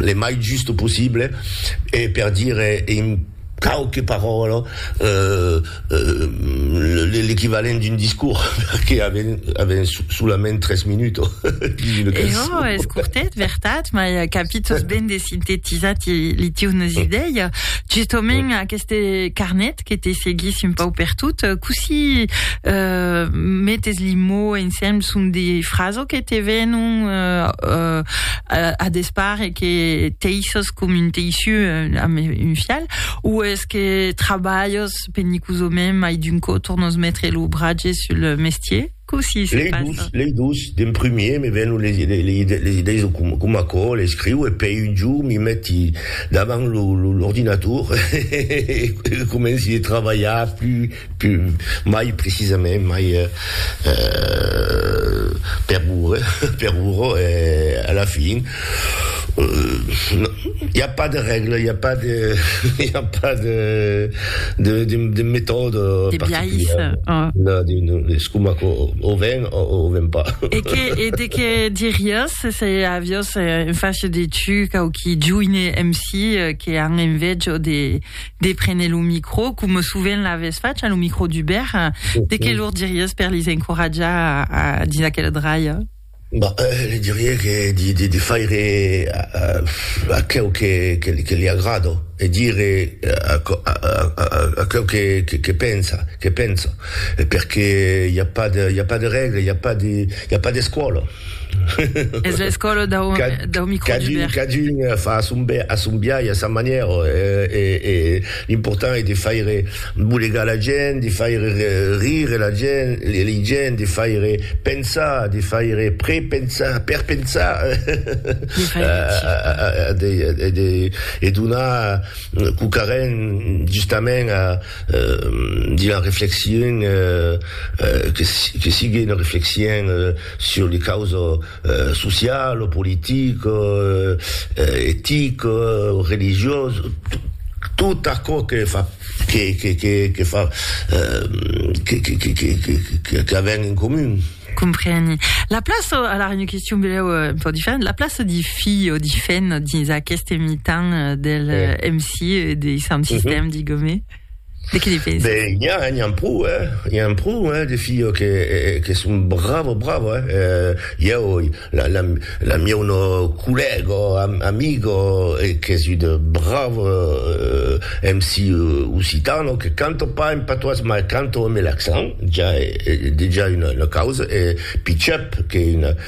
le mai just possible e per dire en quauque paròla l'equivalent d'un discors perque avèm solament tres minutos dins una cançon. E jo, es cortet, vertat, mai capi tosben de sintetizar li tiunes idei. Justament aqueste carnet que te seguís un pau per tot, cossí euh, metes li mots ensemble, son des frases que te venon euh, euh, a, a despart et que teissos com un teiçu euh, amb un fial, ou est-ce que trabalhos penicosament mai d'un cot tornos metre lo bratge sur le mestier? Cossí se passa? Lei dus, lei dus, d'en primier me vèn les idèis de com aquò, l'escriu e pei un jorn mi meti davant l'ordinator e comenci de trabalhar plus, mai precisament, mai per ora, per ora, a la fin. I a pas de règla, i a pas de, i a pas de, de, de, de metòda particulièra. No, no, es coma que o ven o o ven pas. E que, e de que diriás se se aviós un fach de tu quauqui joine MC que an envejo de, de prene lo micro, coma sovent l'avès fach a lo micro d'Hubert, de que lor diriás per lis encoratjar a, a dins aquela draia? Bah, li dirie que de faire aqueu que li agrada e dire aqueu que pensa, que penso, perque i a pas de, i a pas de règle, i a pas de, i a pas d'escòla. Es l'escòla dau microlibèr. Cadun fa a son biais, a sa manièra e. L'important es de faire bolegar la gent, de faire rire la gent, lei gent, de faire pensar, de faire prepensar, perpensar, e donar quauquarren justament a dire una reflexion que sigue una reflexion sur les causes. sociau, politic, etic, religiós, tot aquò que fa que fa qu'avèm en comun. Compreni. La plaça, alara una question belèu un pauc diferent, la plaça dei filhs o dei femnas dins aqueste mitan del MC e dei sound system, digomè? De qui li pese? Ben, n'i a, n'i an pro, hè. I an pro, hè, de filhos que, que son bravos, bravos, hè. Eh, ieu, la, la, la mieu no collègo, am, amigo, qu'es un bravo eh, MC occitano, que canto pas en patois, mas canto amb l'accent, ja, e, e dejà una, una causa, e Pichep, qu'es una.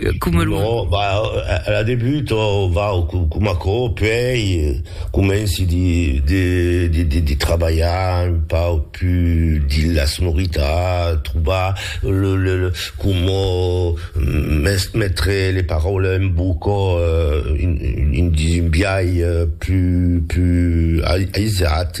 Cat, coma lo... Non, va, a la debut, va, coma aquò, puèi comenci de trabalhar un pauc pus dins la sonoritat, trobar coma metre le paraules en boca dins un biais pus aisat.